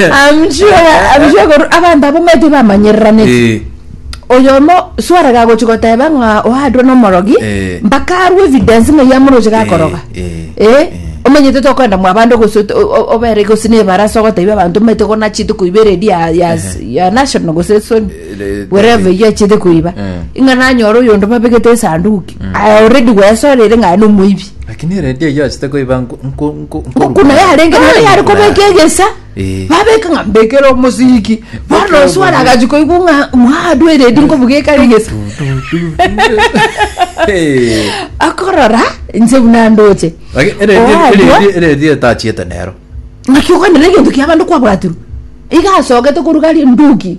I'm sure, I'm sure koru- abanto abo mete bamanyereranete Eh, oyomo swarega agochi goteba ng'a oadwa nomorogi Eh. mpaka arwe evidence ng'a yamoroche gakoroga Eh, eh, Eh, omanyete tokwenda mwa abande gose ot- o- o- obere gose nebarasa ogotebia abanto omanyete gona chite koiba eredi ya- ya- ya national gose soni eh, wherever eh, yachiete koiba eh. ing'a nanyora oyonde babegete esanduki Aya already gwesorire ng'a na omoibi. Lakini eredi eyio achete koiba nko- nko- nko- Ng'oko nkoruka. naye arenge Ai, naye ari kobeka ng'oko egesa. Eh. Babeka ng'a mbekere omosiki. Bono Mbekere oswara omosiki. agachi koigwa ng'a mwadu eredi nkobugeka egesa. Eh. Akorora inse buna ndoche. Lakini eredi- Owadwa- eredi- eredi etachiete nero. Ng'aki okwanera egento kia abande kwabwatirwe. Iga asogete koruga ri nduki.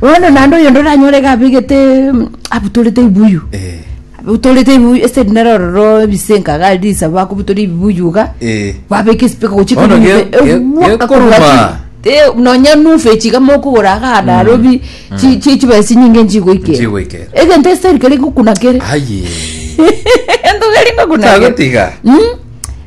Bono naende oyonde oranyore iga abegete abutorete ebibuyu Eh, abutorete ebibuyu ase rindere ororo ebisenka iga ari risabu akobutora ebibuyu iga eh. babeka esipika gochia Bono ge- ge- gekoruma. nonya nufe chiga mokogora agana arobi chi- chi- chibesa chinyinge nchigoikera Nchigoikera. egento eseri keri gokuna kere Aye. egento keri gokuna kere Tagotiga. Mm.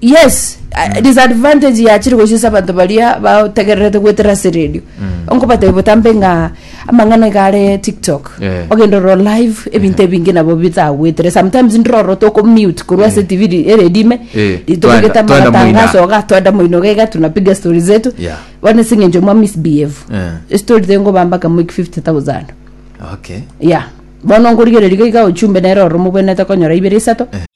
yes a- disadvantage yachire gochisa abanto baria bategererete gwetera ase radio onkobatebia botambe ng'a amang'ana iga are tiktok Eh. ogenda oro live ebinto ebinge nabo bitagwetere sometimes ndiroro toko mute korwa ase tv ri- eredime Eh, twenda- tobegete twenda amatangaso moina. oga twenda moino gaiga tunapiga story zetu Yeah. bono ase eng'encho mwa misbehave Eh. story tengoba mpaka mwiki 50000 okay ya bono nkorigereria iga ochumbe nere oro mobwenete konyora ibere isato